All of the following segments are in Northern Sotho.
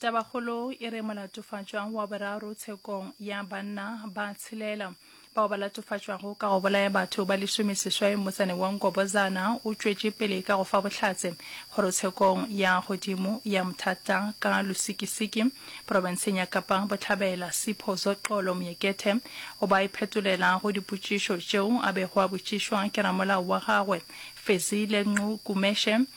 Tabakgolo e re molatofatšwa wa boraro tshekong ya banna ba tshelela. Bao ba latofatšwago ka go bolaya batho ba lesomeseswai motsaneng wa Nkobozana o tšwetše pele ka go fa bohlatse kgorotshekong ya godimo ya Mthatha ka Lusikisiki profenseng ya Kapa Bohlabela. Sipho Zoxolo Moekethe o ba iphetolela go dipotšišo tšeo a bego a botšišwa ke ramolao wa gagwe Fezile Nqu Kumeshe.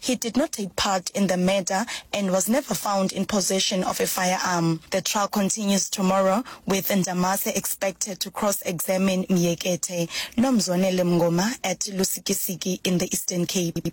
He did not take part in the murder and was never found in possession of a firearm. The trial continues tomorrow with Ndamase expected to cross-examine Myekethe, Nomzwanele Mngoma at Lusikisiki in the Eastern Cape.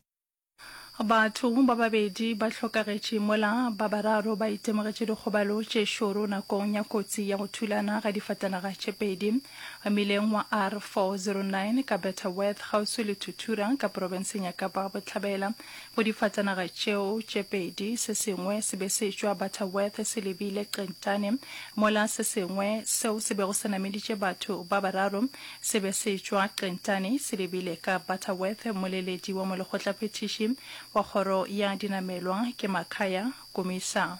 Batho ba babedi ba hlokagetše mola ba bararo ba itemogetše dikgobalo tše šoro nakong ya kotsi ya go thulana ga difatanaga tše pedi. Mmileng wa R409 ka Butterworth kgauswi le Tutura ka porofenseng ya Kapa Bohlabela go difatanaga tšeo tše pedi, se sengwe se be se tšwa Butterworth se lebile Qentane mola se sengwe seo se bego se nameditše batho ba bararo se be se tšwa Qentane se lebile ka Butterworth. Moleledi wa molekgotlaphethiši wa kgoro ya dinamelwa ke Makhaya Kumisa.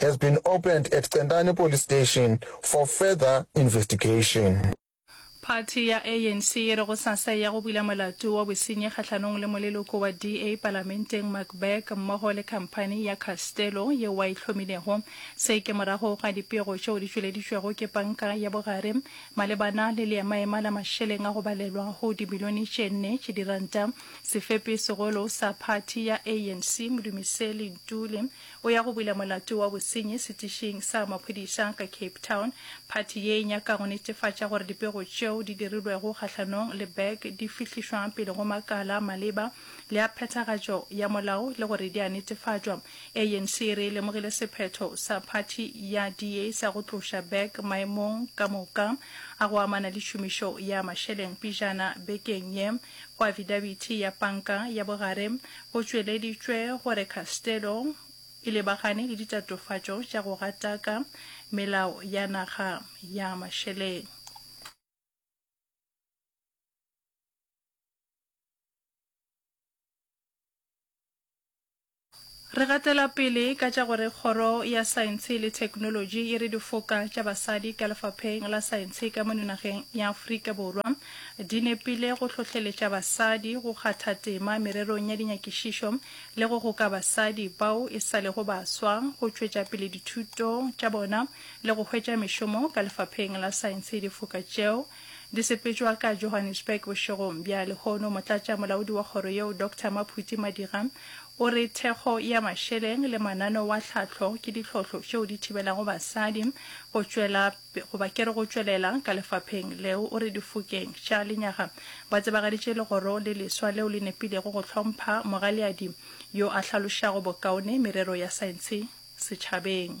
has been opened at Centane Police Station for further investigation. Phathi ya ANC e re go sasa e ya go bula molato wa bosenyi kgahlanong le moleloko wa DA palamenteng Mark Burke mmogo le khamphani ya Castello yeo wa e hlomilego. Se ke morago ga dipego tšeo di tšweleditšwego ke panka ya bogare malebana le leemaema la mašeleng a go balelwa go dimilione tše nne tše diranta. Sefepi segolo sa phathi ya ANC Modumiseli Ntuli O ya go bula molato wa bosenyi setišing sa maphodisa ka Cape Town. Phathi ye e nyaka go netefatša gore dipego tšeo di dirilwego kgahlanong le Berg di fihlišwa pele go makala a maleba le a phethagatšo ya molao le gore di a netefatšwa. ANC e re e lemogile sephetho sa phathi ya DA sa go tloša Berg maemong ka moka a go amana le tšhomišo ya mašeleng pejana bekeng ye. Go afidabithi ya panka ya bogare go tšweleditšwe gore Castello e lebagane le ditatofatšo tša go gataka melao ya naga ya mašeleng. Re gatela pele ka tša gore Kgoro ya Saentshe le Theknolotši e re difoka tša basadi ka Lefapheng la Saentshe ka mono nageng ya Afrika Borwa di nepile go hlohleletša basadi go kgatha tema mererong ya dinyakišišo le go goka basadi bao e sa lego baswa go tšwetša pele dithuto tša bona le go hwetša mešomo ka Lefapheng la Saentshe difoka tšeo Di sepetšwa ka Johannesburg bošegong bja lehono. Motlatša molaodi wa kgoro yeo Doctor Maphuti Madira o re thekgo ya mašeleng le manano wa tlhahlo ke ditlhohlo tšeo di thibelago basadi go tšwela goba kere go tšwelela ka lefapheng leo. O re difokeng tša lenyaga ba tsebagaditše legoro le leswa leo le nepilego go hlompha mogaliadi yo a hlalošago bokaone merero ya saentshe setšhabeng.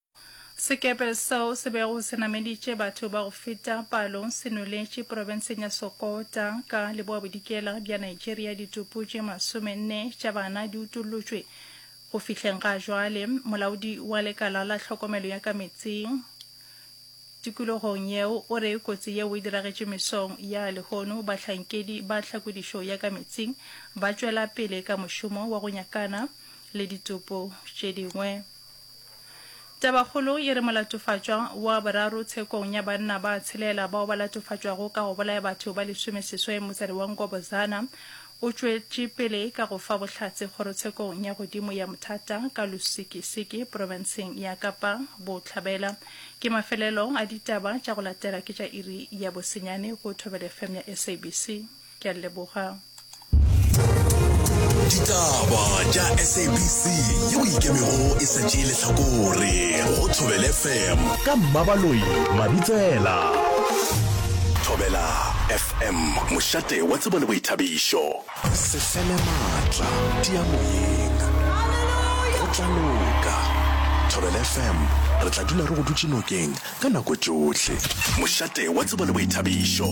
Sekepe seo se bego se nameditše batho ba go feta palo se nweletše profenseng ya Sokota ka leboabodikela bja Nigeria ditopo tše masomenne tša bana di utollotšwe. Go fihleng ga jwale, molaodi wa lekala la tlhokomelo ya ka meetseng tikologong yeo o re kotsi yeo e diragetše mesong ya lehono. Bahlankedi ba tlhakodišo ya ka meetseng ba tšwela pele ka mošomo wa go nyakana le ditopo tše dingwe. Tabakgolo e re molatofatšwa wa boraro tshekong ya banna ba tshelela bao ba latofatšwago ka go bolaya batho ba lesomeseswai mosadi wa Ngobozana o tšwetše pele ka go fa bohlatse kgorotshekong ya godimo ya Mthata ka Lusikisiki profenseng ya Kapa Bohlabela. Ke mafelelo a ditaba tša go latela ke tša iri ya bosenyane go Thobelefm ya SABC. ke a leboga ditaba tša sabc yeo ikemego e sa tšee lehlakore go thobele fm ka mmabaloi mabitsela thobela fm mošate wa tsebo le boithabišo sefele maatla diamoyeng go tla loka thobela fm re tla dula re go dutše nokeng ka nako tšohle mošate wa tsebo le boithabišo